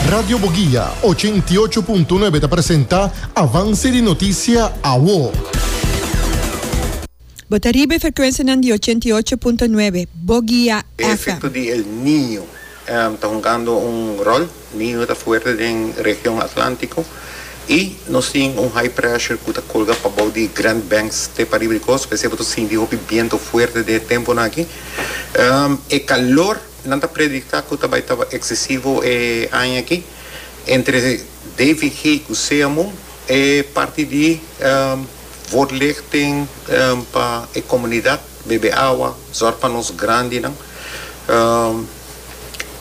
Radio Boguia, ochenta i ocho punto nuebe ta presenta Avance di Noticia Awo. Bo ta riba e frecuencianan di ochenta i ocho punto nuebe Boguia E FM. efecto di El Niño ta hungando un rol. Niño ta fuerte den region Atlantico y nos tin un high pressure cu ta colga pa bou di Grand Banks te pariba di costa. P'esey bo ta sinti hopi biento fuerte den e temponan aki. E calor. Nan ta predicta cu ta bay taba excesivo e aña aki entre DVG cu sea moe e parti di word leg tin pa e comunidad, bebe awa, zorg pa nos grandinan,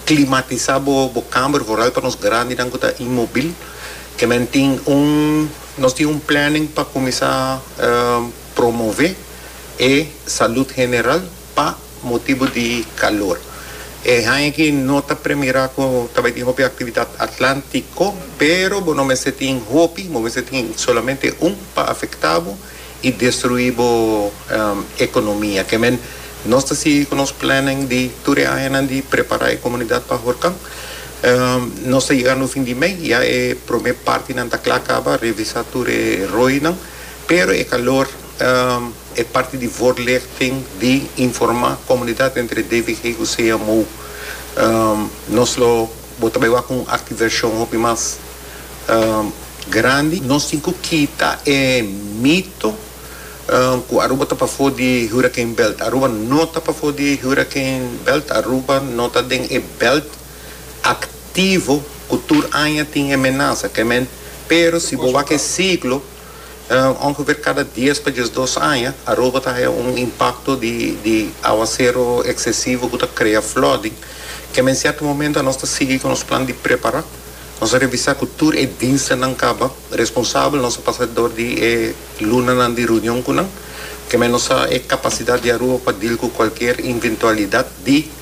climatisa bo kamer vooral pa nos grandinan cu ta inmobil. E men tin un, nos tin un planning pa cuminsa promove e salud general. Pa motibu di calor. E haña aki no ta premira cu ta bay tin hopi actividad Atlantico, pero bo no mester tin hopi, bo mester tin solamente un pa afecta bo y destrui bo economia. Kemen nos ta sigui cu nos planning di tur e añanan di prepara e comunidad pa Horcan. Nos ta yegando fin di mey, ya e prome partinan ta cla caba, revisa tur e roynan, pero e calor. E parti di voorlichting, di informa comunidad entre DVG cu CMU. Nos lo bo ta bay wak un activersion hopi mas grandi. Nos tin cu kita e mito cu Aruba ta pafo di hurricane belt. Aruba no ta pafo di hurricane belt. Aruba no ta den e belt activo cu tur aña tin e menasa. Pero si bo wak e ciclo. Ongeveer cada dies pa diesdos aña, Aruba ta haya un impacto di di aguacero excesivo cu ta crea flooding. Kema en cierto momento nos ta sigui cu nos plan di prepara, nos a revisa cu tur e dienstennan caba responsabel, nos a pasa door di e lunanan di reunion cu nan, kema nos sa e capacidad di Aruba pa deal cu cualkier inventualidad di.